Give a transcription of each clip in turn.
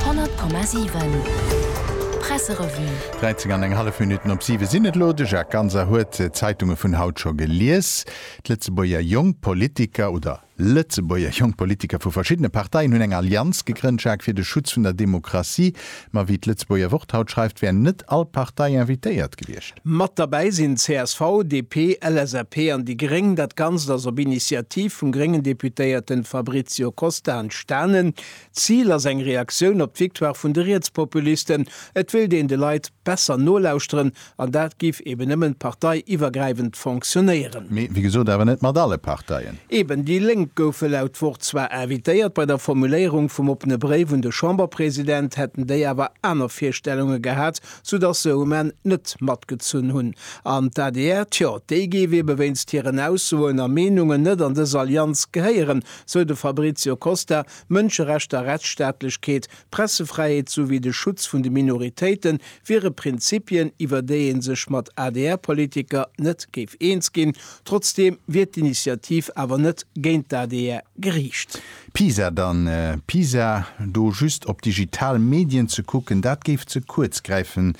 100,7 Presserevue. 13 an eng hallef Minutten op siwe sinn et elo. De Jacques Ganser huet d'Zeitunge vun haut scho gelies. D'Lëtzebuerger Jonk Politiker oder Lëtzebuerger Jonk Politiker vu verschiddene Parteien hunn eng Allianz gegrënnt, Jacques, fir de Schutz vun der Demokratie. Ma wéi d'Lëtzebuerger Wort haut schreift, wär net all Partei invitéiert gewiescht. Mat derbäi sinn csv, DP, LSAP an déi gréng. Dat Ganzt ass op Initiativ vum gréngen Deputéierten Fabrizio Costa entstanen. D'Zil ass eng Reaktioun op d'Victoire vun de Rietspopulisten. Et wéilt een de Leit besser nolauschteren, An dat giff eben nemmen parteiiwergreiwend fonktionnéieren. Mee wéi gesot awer net mat alle Parteien. Eben, déi Lénk goufe laut Wort zwar invitéiert, bei der Formuléierung vum oppene Bréif un de Chamberpresident hätten déi awer aner Virstellunge gehat, soudass se um Enn net matgezunn hunn. An d'ADR, tjo, déi géif ebe wéinst hiren Aussoen a Meenungen net an dës Allianz gehéieren, sou de Fabrizio Costa, Mënscherechter, Rechtsstaatlechkeet, D'Pressefräiheet souwéi de Schutz vun de Minoritéite wiere Prinzipien, iwwer déi ee sech mat ADR-Politiker net géif eens ginn. Trotzdeem wier d'Initiativ awer net géint d'ADR geriicht. Pisa dann Pisa, do just op digital Medien ze kucken, dat géif ze kuerz gräifen,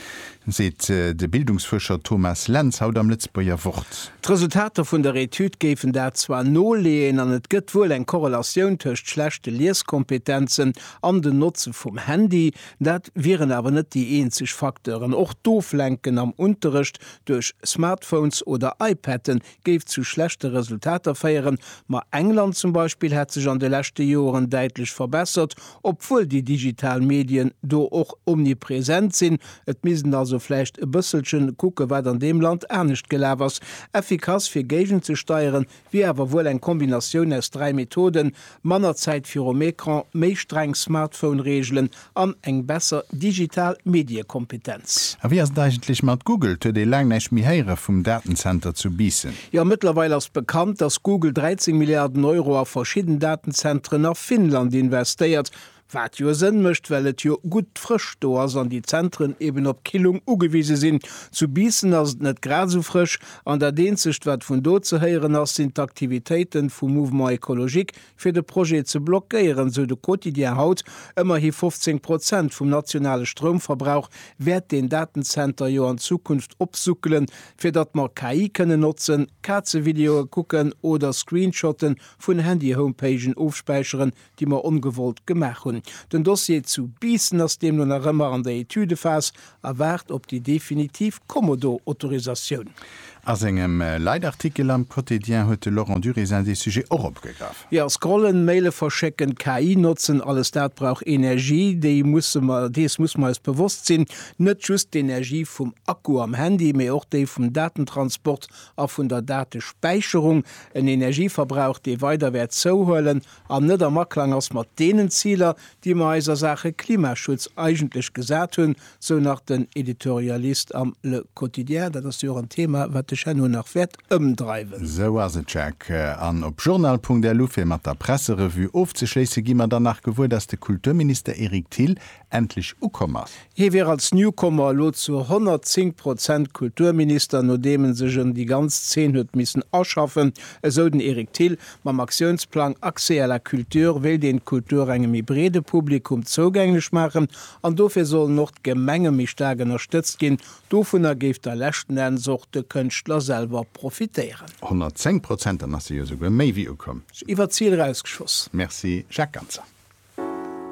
seet de Bildungsfuerscher Thomas Lentz haut am Lëtzebuerger Wort. D'Resultater vun der Etüd géifen dat zwar noleeën an et gëtt wuel eng Korrelatioun tëscht schlechte Lieskompetenzen an den Notze vum Handy, dat wieren awer net déi eenzeg Facteuren. Och d'Oflenken am Unterrecht duerch Smartphones oder iPade géif zu schlechte Resultater féieren. Ma England zum Beispill hätt sech an de leschte Joren däitlech verbessert, obwuel déi digital Medien do och omnipresent sinn. Et misst en also vläicht e bësselche kucke wat an deem Land anescht gelaf ass. Effikass fir géigenzesteieren Wier awer wuel eng Kombinatioun aus dräi Methoden, manner Zäit virum Ecran, méi streng Smartphone-Reegelen an eng besser digital Mediekompetenz. A wéi ass et eigentlech mat Google? Et huet ee laang näischt méi héiere vum Datenzenter zu Biissen. Jo, mëttlerweil ass bekannt, datt Google 13 Milliarden Euro a verschidden Datenzentren a Finnland investéiert. Wat jo Sënn mécht, well et jo gutt Frëscht do ass an déi Zentren eben op Killung ugewise sinn. Zu Biissen ass et net grad esou frësch an dat eenzegt, wat vun do ze héieren ass, sinn d'Aktivitéiten vum Mouvement Ecologique fir de Projet ze blockéieren, esou de Quotidien haut. Ëmmerhi 15 Prozent vum nationale Stroumverbrauch wäert deen Datenzenter jo an Zukunft opsuckelen, fir datt mer KI kënnen notzen, Kazevideoe kucken oder Screenshotten vun Handy-Homepagen ofspäicheren, déi mer ongewollt gemaach hunn. Den Dossier zu Biissen ass deemno nach ëmmer an der Etüdephas a waart op déi definitiv Kommodo-Autorisatioun. A sengem Leitartikel am Quotidien huet de Laurent Durézin dee Sujet och opgegraff. Jo, scrollen, Maile verschécken, KI notzen, alles dat brauch Energie. Dee musse mer, dees musse mer eis bewosst sinn. Net just d'Energie vum Akku am Handy, mee och déi vum Datentransport a vun der Datespäicherung. En Energieverbrauch, dee weider wäert zouhuelen. an net am Aklang ass mat deenen Ziler, déi mer eis a Saache Klimaschutz eigentlech gesat hunn, sou nach den Editorialist am Le Quotidien. Dat ass jo och en Thema, wat dech herno nach wäert ëmdreiwen. Sou ass et, Jacques. An op journal.lu, fir mat der Presserevue ofzeschléisse, gi mer dann nach gewuer, dass de Kulturminister Eric Thill endlech ukomm ass. Hie wier als Newcomer elo zu 110 Prozent Kulturminister, nodeem e sech un déi ganz Zeen huet missen aschaffen, esou den Eric Thill. Mam Aktiounsplang Accès à la culture wéilt een d'Kultur engem méi breede Publikum zougänglech maachen an dofir sollen och d'Gemenge méi staark ënnerstëtzt ginn. Dovunner géif da leschten Enns och de Kënschtler selwer profitéieren. 110 Prozent, dann ass se jo souguer méi wéi ukomm. Iwwert d'Zil erausgeschoss. Merci Jacques Ganser.